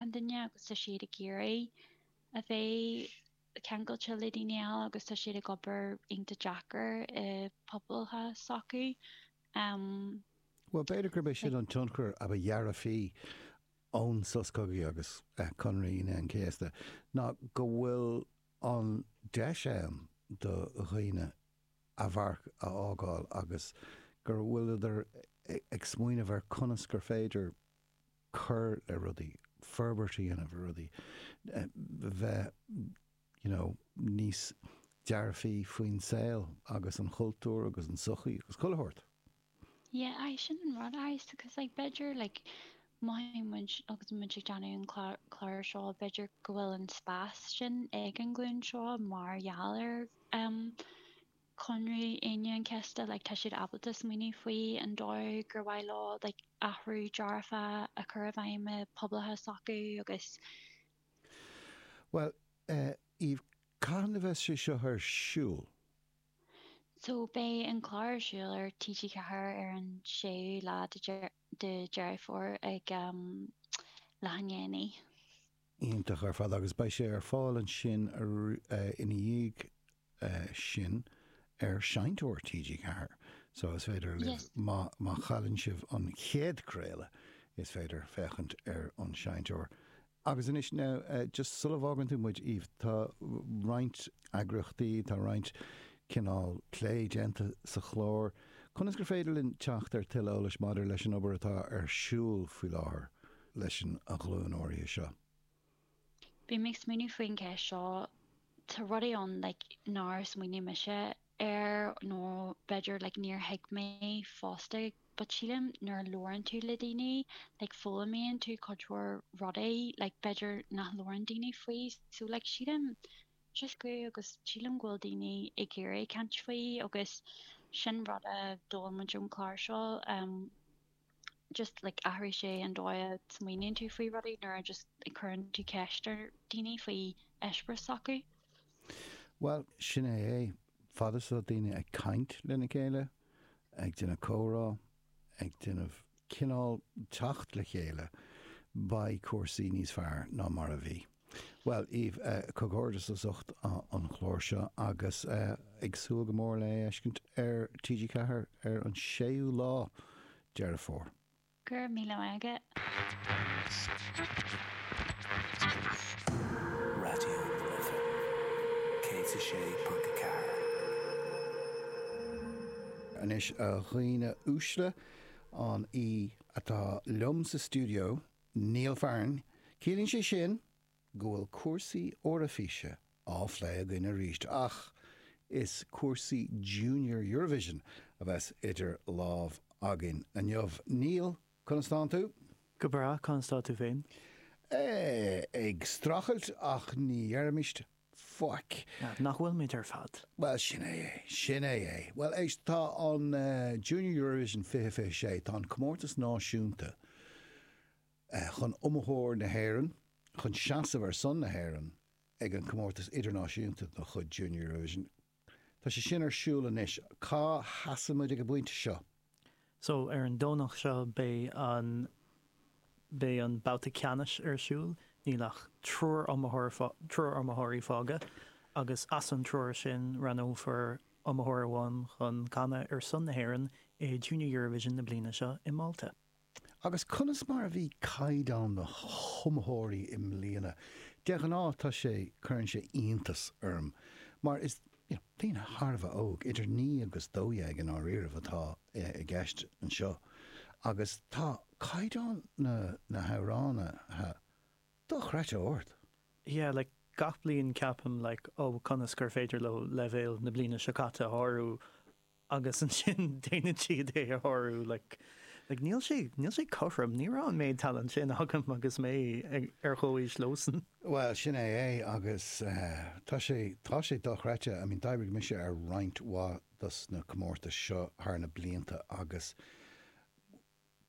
an duine agus tá siad ag iarraidh a bheith ceangailte le daoine eile agus tá siad ag obair iontach deacair i bpobail s'acu. Bhuel, b'fhéidir gurb é sin an tionchar a ba dhearfaí ón Sos Cogaidh agus Conradh Aoine an Chéasta ná go bhfuil an deis ann do dhaoine a marc a fhágáil agus go bhfuileadar ag smaoineamh ar conas gur féidir cur le rudaí, forbairt a dhéanamh ar rudaí, bheith you know níos dearfaí faoin saol agus an chultúr agus an sochaí agus chuile shórt. Yeah aye sin an rud is because like b'fhéidir like mothaíonn muid agus muid ag déanamh an clár seo b'fhéidir go bhfuil an spás sin ag an ghlúin seo mar gheall ar ehm Conradh Aoine an Chéasta like tá siad ábalta smaoineamh faoi an dóigh gur mhaith leo like athrú dearfach a chur i bhfeidhm i bpobail s'acu agus. Bhuel eh Aoife cathain a bheas sé seo ar siúl? So beidh an clár ar siúl ar TG4 ar an 6ú lá de Deireadh Fómhair ag am leathdhéanach. iontach ar fad agus beidh sé ar fáil ansin ina dhiaidh sin ar Seinnteoir TG4 so is féidir libh, má chailleann sibh an chéad craoladh, is féidir féachaint ar an Seinnteoir. Agus anois now, just sula bhfágann tú muid, Aoife, tá roinnt eagraíochtaí, tá roinnt cineál plé déanta sa chlár. Conas gur féidir linn teacht ar tuilleadh eolais maidir leis an obair atá ar siúl faoi láthair? leis an ghlúin áirithe seo. Bhí mé ag smaoineamh faoin gceist seo, tá rudaí ann like nár smaoinigh mise air nó b'fhéidir like níor thuig mé fosta but sílim nuair a labhrann tú le daoine like foghlaimíonn tú cuid mhór rudaí like b'fhéidir nach labhrann daoine faoi so like sílim just go, agus sílim go bhfuil daoine ag iarraidh caint faoi agus sin rud a d'fhoghlaim muid ón chlár seo. just like athraigh sé an dóigh a smaoiníonn tú faoi rudaí nuair a just a chuireann tú ceist ar daoine faoi eispéireas s'acu. Bhuel, sin é é. Fad is atá daoine ag caint lena chéile, ag déanamh comhrá, ag déanamh cineál teacht le chéile, beidh cúrsaí níos fearr ná mar a bhí. Bhuel, Aoife, comhghairdeas as ucht an chlár seo agus ag súil go mór le é a fheiscint ar TG4 ar an 6ú lá Deireadh Fómhair. Go raibh míle maith agat. Raidió na Life 106.4. Anois, a dhaoine uaisle, an í atá liom sa stiúideo Niall faram, ciallaíonn sé sin go bhfuil cúrsaí Eoraifíse á phlé againn aríst ach is cúrsaí Junior Eurovision a bheas idir lámh againn inniu. Niall, conas tánn tú? Go breá, conas tánn tú féin? Eh, ag strachailt ach ní déarfaimid Faic. Nach bhfuil muid ar fad? Bhuel, sin é é. Sin é é. Bhuel, éist, tá an Junior Eurovision 2026, tá an comórtas náisiúnta chun iomaitheoir na hÉireann, chun seasamh ar son na hÉireann ag an gcomórtas idirnáisiúnta de chuid Junior Eurovision, Tá sé sin ar siúl anois. Cá sheasann muid ag an bpointe seo? So, ar an Domhnach seo beidh an, beidh an babhta ceannais ar siúl. Níl ach triúr iomaitheoir, triúr iomaitheoirí fágtha agus as an triúr sin roghnófar iomaitheoir amháin chun canadh ar son na hÉireann i Junior Eurovision na bliana seo i Málta. Agus conas mar a bhí caighdeán na hiomaitheoirí i mbliana? De ghnáth tá sé, cuireann sé iontas orm mar is, you know, daoine thar a bheith óg, idir naoi agus dó dhéag i ndáiríribh atá i gceist anseo, agus tá caighdeán na na hamhránaithe dochreidte ard. Yeah, like, gach bliain ceapaim, like, oh, conas gur féidir leo leibhéal na bliana seo caite a shárú? agus ansin déanann siad é a shárú, like, like níl sé, níl sé cothrom, ní raibh an méid talent sin agam agus mé ag, ar chomhaois leosan. Bhuel, sin é é agus tá sé, tá sé dochreidte, I mean d'oibrigh mise ar roinnt mhaith dos na comórtais seo thar na blianta agus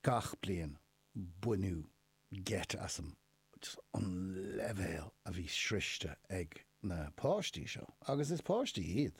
gach bliain baineadh geit asam just an leibhéal a bhí sroichte ag na páistí seo, agus is páistí iad.